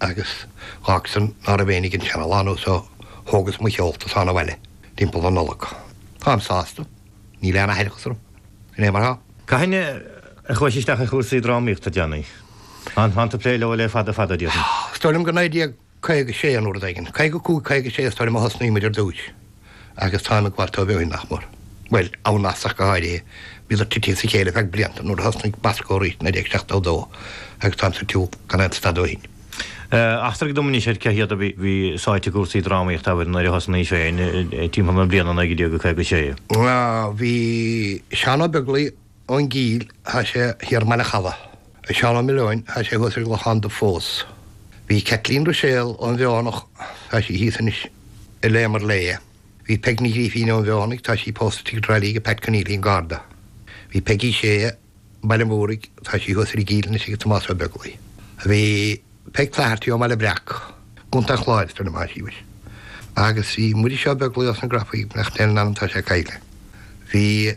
agus ach ansan ná raibh éinne ag an seanalánúin ó so thógas mo sheolta ansan abhaile timpeall na Nollag. Táim sásta, níl aon aithreachas orm. Sin é mar thá. Cathain a chuaigh sí isteach i gcúrsaí drámaíochta ansan? Táim ag plé leo le fada fada, déarfainn. Is dóigh liom gur 1956 nó uair éigin, 55, 56 is dóigh liom a thosnaíos ar dtúis. agus táim ag gabháil dóibh ó shin nach mór. Bhuel, an-ghnóthach go háirithe, bhíodar titithe as a chéile ar feadh blianta nuair a thosnaigh Bosco arís i 1972 agus táim sa tsiúl gan aon stad ó shin. Eachtraigh dom anois ach cé hiad a bhí sáite i gcúrsaí drámaíochta abair nuair a thosnaís féin timpeall na bliana 1956. Bhí Seán Ó Beaglaoich. ón gCíll, thá sé thiar i mBaile Challa. Seán Ó Milliúin, thá sé thuas ar an gClochán Dubh fós. Bhí Caitlín Ruiséal ón bhFeothanaigh, thá sí thíos anois, a léamar léi. Bhí Peig Ní Ghrífín ón bhFeothanaigh, tá sí pósta i dTrá Lí ag Pat Conneely an Garda. Bhí Peigí Shéa, Baile an Mhúraigh, tá sí thuas ar an gCíll anois ag Tomás Ó Beaglaoi. Bhí Peig Flaherty ón mBaile Breac, Co. an Chláir, is dóigh liom, thá sí anois. Agus bhí Muiris Ó Beaglaoi ós na Grafaidh, go ndéana Dia grásta air, tá sé caillte. Bhí.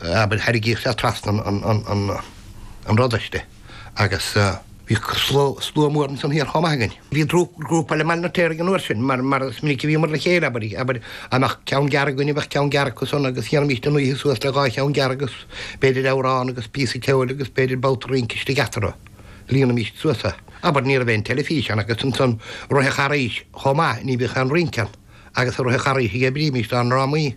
Abair, thairgfeadh sé trasna an pharóiste agus bhí slua mór ansan thiar chomh maith againn. Bhí grúpa ó Bhaile an Fheirtéaraigh ag an uair sin, mar is minic a bhíomar le chéile, abair, abair, go mbeadh ceann gearr againn is bheadh ceann gearr acu san agus dhéanfaimis an oíche suas le dhá cheann gearr agus b'fhéidir amhrán agus píosa ceoil agus b'fhéidir babhta rince istigh eatarthu a líonfaimis suas, abair, ní raibh aon teilifís ann agus ansan i rith an Charghais chomh maith, ní bhíodh aon rince ann agus i rith an Charghais a dh'oibrímis na drámaí.